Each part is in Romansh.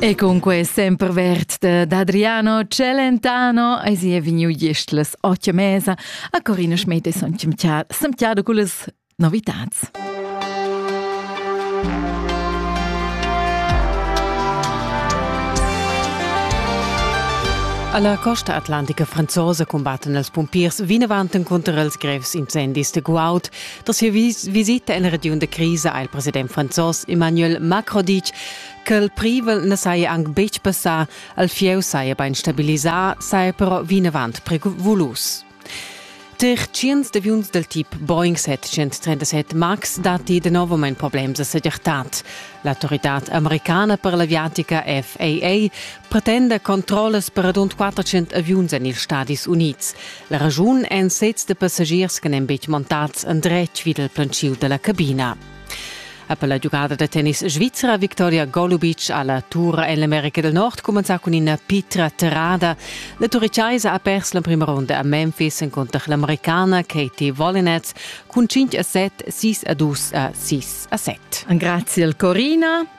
E cunque sempre vert dad Adriano Celentano e si è vegnu gestlas otto mesa a Corina Schmete semtiado con le novità. Alla costa atlantica franzosa combatten els pumpiers vinavant conter els grevs incendis de Guaut. Da sia visita en la regiun da crisa ha il president franzos Emmanuel Macron ditg ch'el privel na saja anc betg passà, al fieu saja bain stabilisà, saja però vinavant prevolus. Tar tschients d'aviuns dal tip Boeing 737 MAX datti danovamain problems a segirtad. L'autoritad americana per l'aviatica FAA pretenda controllas per radund 400 aviuns en ils Stadis Unids. La ragiun èn sezs de passagiers che n'èn betg montads endretg vid il plantschiu della cabina. Per la giugada da tennis svizra Victoria Golubic a la Tour en l'America del Nord cumenzà cun ina pitra terrada. La turichaisa ha pers l'emprima ronda a Memphis encunter l'Americana Katie Volinetz cun 5 a 7, 6 a 2 a 6 a 7. Grazie al Corina.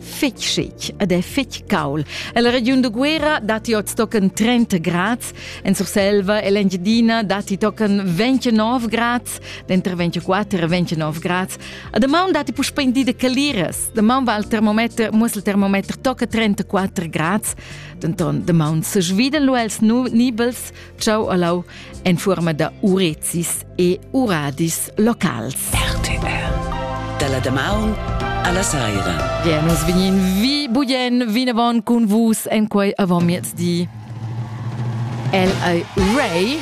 fitg chic ed è fitg caul. La regiun da Guera datti oz tochen 30 grads, en Surselva e l'Engiadina datti tochen 29 grads, denter 24 e 29 grads. A damaun datti puspè in di da caliras. Damaun va il termometer, muss il termometer tocca 34 grads, denton damaun se svidan lu els nibels, ciao alau, en forma da urezis. e uradis locals. RTR. Dalla damaun alla saira. Ja, nus vegnin vi bugen vinavon cun vus en quei avon miezdi. El ei Ray